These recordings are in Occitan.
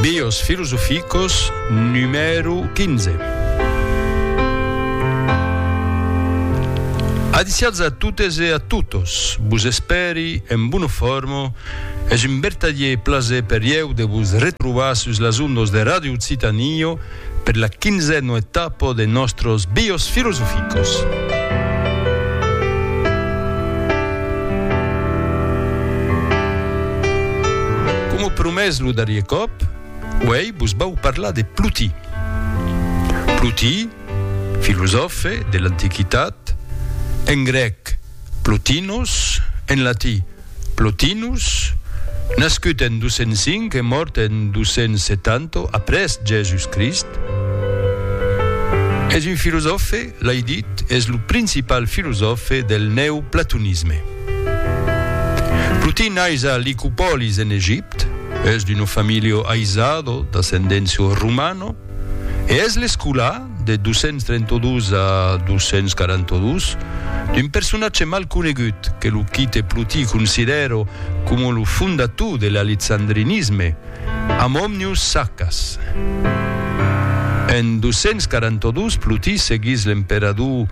Bios filosoficos numèro 15. Adiciats a totes e a totos, vos espèri en bona forma, es un vertadier plaser per ieu de vos retrobar sus las ondas de Radio Occitanie, Per la quinzèno etapa de nòstros Bios Filosoficos. Coma promés lo darrier còp, uèi vos vau parlar de Plotí. Plotí, filosòfe de l'Antiquitat, en grèc, Plotinos, en latí, Plotinus, nascut en 205 e mòrt en 270 après Jèsus Crist, es un filosòfe lai dit, es lo principal filosòfe del neoplatonisme. Plotin nais a Licopòlis en Egipte, es d'uno familio aisado d'ascendencio romano e es l'escolà, de 232 a 242, d'un personatge mal conegut que lo quite Plotí considèro coma lo fondator de l'alexandrinisme, amb Omnius Saccas. En 242, Plotí seguís l'emperador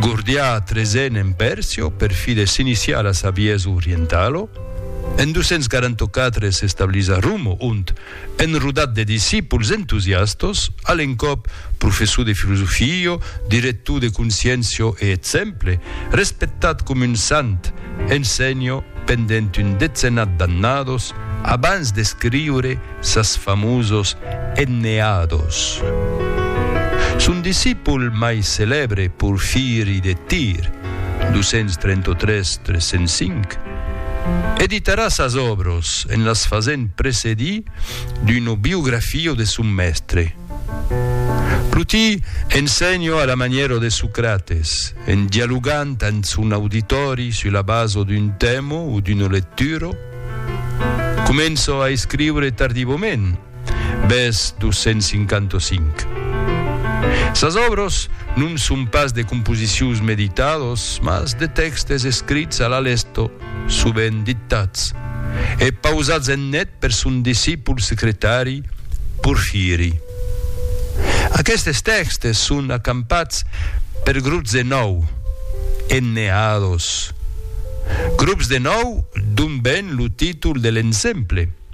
Gordià XIII en Pèrsia per fi de s'iniciar a la saviesa orientala. En 244 s'establís a Roma, ont, Enrodat de discípuls entusiastos, a l'encòp professor de filosofio, director de Consciencio e exemple, respectat com un sant, ensenho pendent un decenat d'annados abans d'escriure sas famosos Enneados. Son discipul mai celèbre Porfiri de Tir, 233 305, editarà sas òbros en las fasent precedir d'una biografio de son mèstre. Plotí ensenho a la manièra de Socrates, en dialogant amb son auditòri sus la basa d'un tèma o d'una lectura. Començo a escriure tardivament, Bes 255. Sas òbros non son pas de composicions meditados, mas de tèxtes escrits a la lesto, sovent dictats, e pausats en net per son discipul secretari Porfiri. Aquestes tèxtes son acampats per grups de nòu, enneados. Grups de nòu, d'ont ven lo títol de l'ensemble.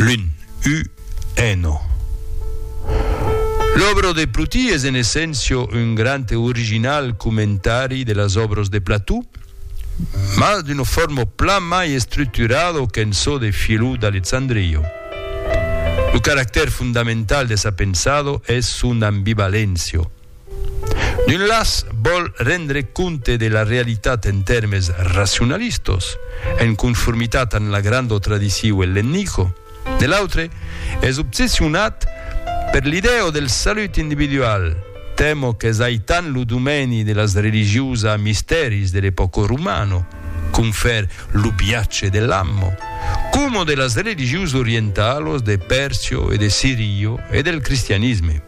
L'un, u, eno. L'òbro de Plotí es en essencio un grand e original comentari de las òbros de Plató, mas d'una forma plan mai estructurado qu'en çò de Philou d'Alexandrio. Lo caractèr fondamental de sa pensado es son ambivaléncia. D'un las vòl rendre compte de la realitat en tèrmes racionalistos, en conformitat amb la granda tradiciu ellennico, de l'autre es obsessionat per l'idèo del salut individual, tèmo qu'es aitant lo domèni de las religiosa mistèris de l'epòca romano, confèr lo biatge de l'ammo, coma de las religiosa orientalos de Pèrcio e de Sirio e del cristianisme.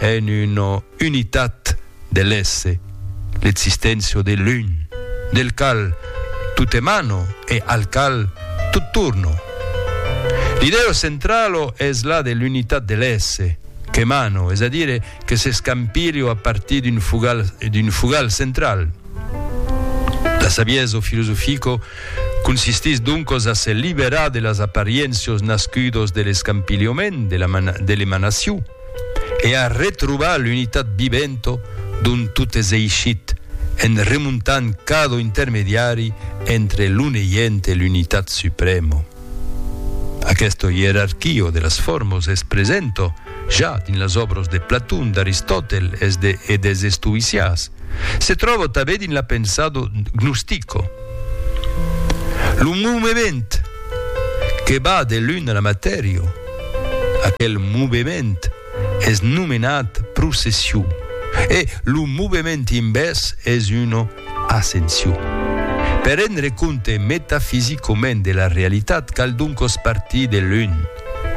En una unitat de l'èsse, l'existéncia de l'un, del qual tot emana e al qual tot torna. L'idèa centrala es la de l'unitat de l'èsse, qu'emana, es a dire que s'escampilha a partir d'un fogal, d'un fogal central. La saviesa filosofica consistís doncas a se liberar de las apariéncias nascudas de l'escampilhament, de l'emanacion. e a retrobar l'unitat vivento d'ont tot es eishit, en remontant cada intermediari entre lo neient e l'unitat supremo. Aquesta ierarquio de las formos es presento ja dins las òbros de Platon, d'Aristòtel es de e des estoïcias. Se tròba tanben dins la pensado gnostica. Lo movement que va de l'un a la matèria, Aquel movement es nomenat procession e lo movement invèrs es una ascension. Per rendre compte metafisicament de la realitat cal doncas partir de l'un,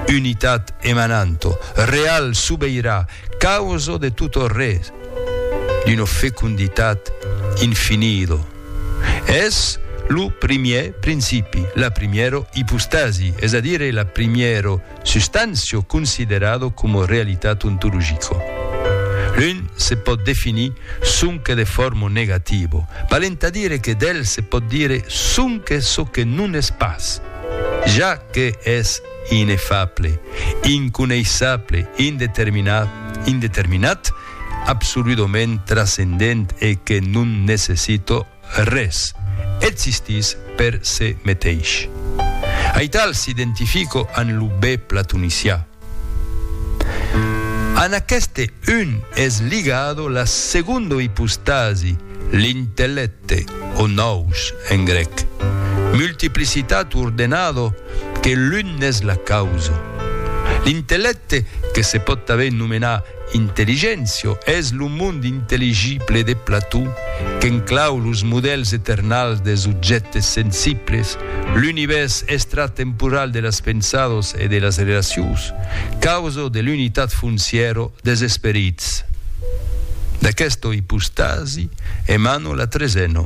unitat emananta, real, sobeirà, causa de tot res, d'una fecunditat infinida. Es lo primièr principi, la primièro ipostasi, es a dire la primièro substància considerada coma realitat ontologica. L'un se pòt definir sonque de forma negativa, valent a dire que d'el se pòt dire sonque çò que non es pas, ja que es inefable, inconeissable, indeterminat, absoludament trascendent e que non necessito res, existís per se meteis. Aital s'identifico an lo be platonicià. An aqueste un es ligado la segondo ipostasi, l'intellècte, o nous en grec. Multiplicitat ordenado que l'un n'es la causo. L'intellècte, que se pòt tanben nomenar Intelligentio es lo mond intelligible de Plató qu'inclau los modèls eternals dels objèctes sensibles, l'univèrs extratemporal de las pensadas e de las relacions, causa de l'unitat foncièra dels esperits. D'aquesta ipostasi emana la tresena.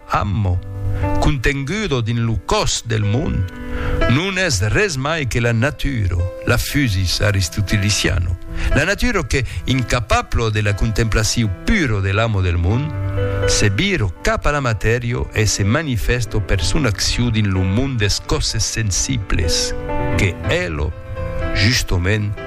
Ammo, contengudo dins lo còs del mond, non es res mai que la naturo, la fusis aristotiliciano, la naturo que, incapablo de la contemplaciu puro de l'ammo del mond, se viro cap a la matèrio e se manifesto per son acciu dins lo mond des coses sensibles, que Elo, justement,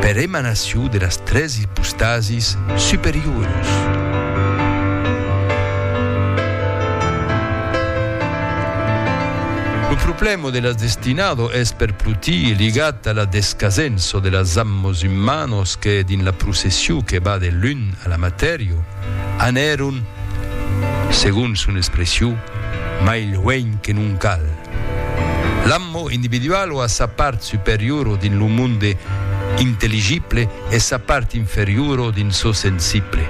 per emanacion de las tres ipostasis superioras. Lo problèma de las destinadas es per protii ligat a la descasença de las ammas umanas que, dins la procession que va de l'un a la matèria, anèron, segon son expression, mai luenh que non cal. L'amor individual o a sa part superiora dins lo monde intelligible e sa part inferiora dins çò sensible.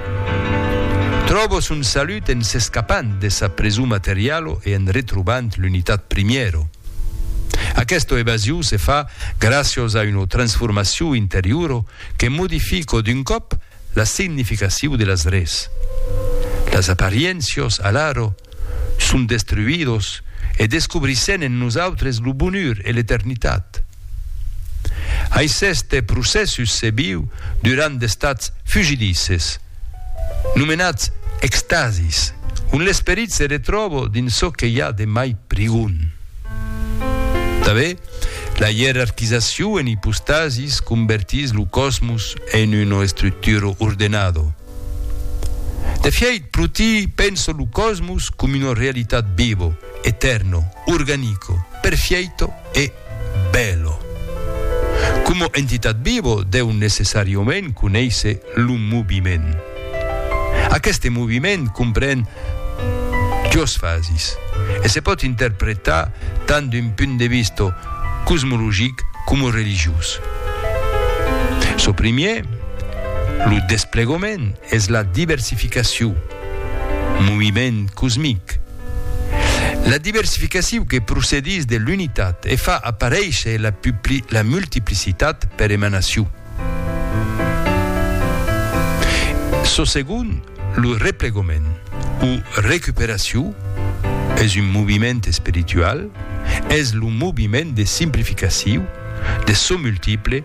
Tròba son salut en s'escapant de sa preson materiala e en retrobant l'unitat primièra. Aquesta evasion se fa gràcias a una transformacion interiora que modifica d'un còp la significacion de las res. Las apariencias, alara, son destruidos e descobrissèn en nosautres lo bonur e l'eternitat. Aiceste procèssus se viu durant d'estats fugidises, nomenats extasis, ont l'esperit se retròbo dins çò que i a de mai prigon. Tanbe, la ierarquizacion en ipostasis convertís lo cosmos en una estructura ordenado. De fièit, pro ti, penso lo cosmos com una realitat vivo, eterno, organico, perfièito e bèlo. Coma entitat vivo deu necessàriament conéisser lo moviment. Aqueste moviment compren duas fasis e se pòt interpretar tant d'un punt de vista cosmologic coma religiós. Çò primièr, Lo desplegament es la diversificacion, moviment cosmic. La diversificacion que procedís de l'unitat e fa aparéisher la la multiplicitat per emanacion. Çò segon, lo replegament o recuperacion, es un moviment espiritual, es lo moviment de simplificacion de çò multiple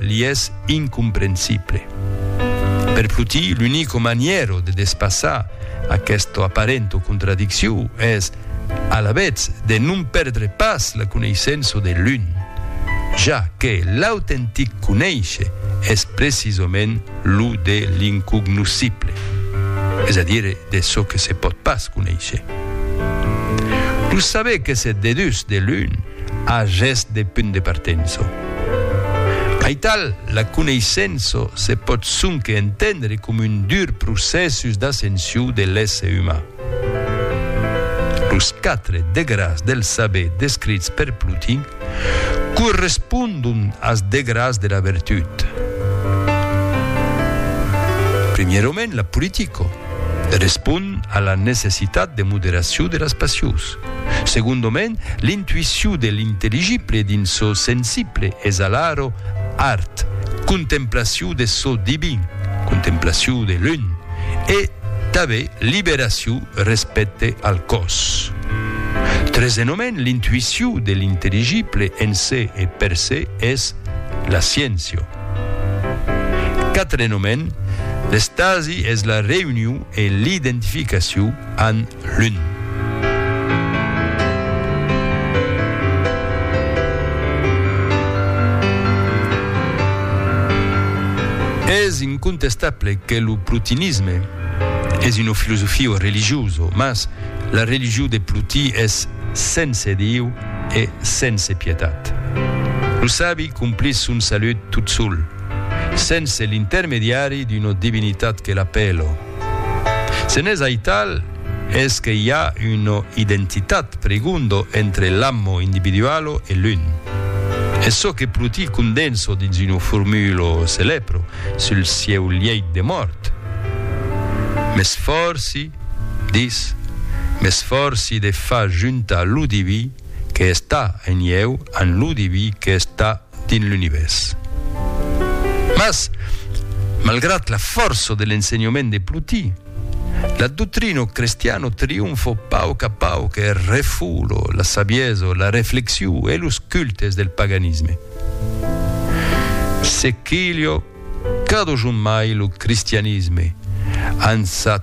li es incomprensible. Per Fluti, l'unico maniero de despassar aquesta aparenta contradiccion es, alavetz, de non perdre pas la coneissença de l'un, ja que l'autentic conéisher es precisament lo de l'incognoscible, es a dire de çò que se pòt pas conéisher. Lo saber que se dedús de l'un, A gest de punt de partenço. Aital, la coneissenço se pòt sonque entendre com un dur procèssus d'ascensiu de l'èsse uman. Los quatre degràs del saber descrits per Plotin correspondon as degràs de la vertut. Primièrament, la politico respond a la necessitat de moderaciu de las passions. Segondoment, l'intuicion de l'intelligible dins çò sensible es alaro art, contemplacion de çò divin, contemplacion de l'un, e tanben liberacion respècte al còs. Tresenhoment, l'intuicion de l'intelligible en se e per se es la sciéncia. Quatrenhoment, l'estasi es la reünion e l'identificacion amb Lun. Es incontestable que lo plotinisme es una filosofia religiosa, mas la religion de Plotí es sense Dieu e sense pietat. Lo sabi complís son salut tot sol, sense l'intermediari d'una divinitat que l'apèla. Se n'es aital, es que i a una identitat, pregondo, entre l'ammo individualo e l'un. Es çò que Pruti condenso dins una formulo celèpro sul sieu lièit de mòrt, M'esfòrci, dis, m'esfòrci de far juntar lo diví que es tà en ieu amb lo diví que es tà dins l'Univèrs. Mas, malgrat la fòrça de l'ensenhament de Plotí, la doctrina crestiana trionfa a pauc a pauc e refoula la saviesa, la reflexion e los cultes del paganisme. Se quilha cada jorn mai lo cristianisme ans sa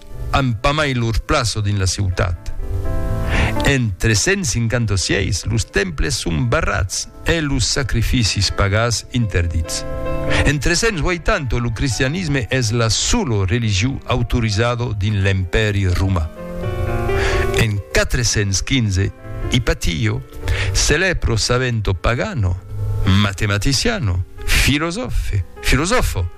an pas mai lor plaça dins la ciutat. En 356, los temples son barrats e los sacrificis pagans interdits. En 380, lo cristianisme es la sola religió autorizada dins l'Empèri roman. En 415, Ipatio, celèbro savento pagano, matematiciano, filosòfe, filosòfa,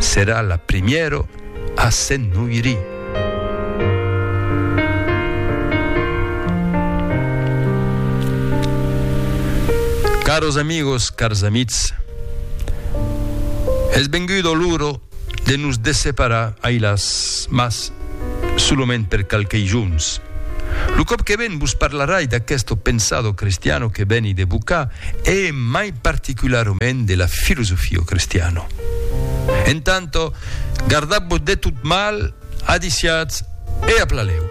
Serà la primièro a se'n noiri. Caros amigos, cars amitz, es vengudo l'uro de nos desseparar ailas, mas solament per qualquei jorns. Lo còp que ven vos parlarai d'aquesto pensado cristiano que veni de Bucà e mai particularment de la filosofio cristiano. En tanto, gardat-vos de tot mal, adiciatz e aplaleu.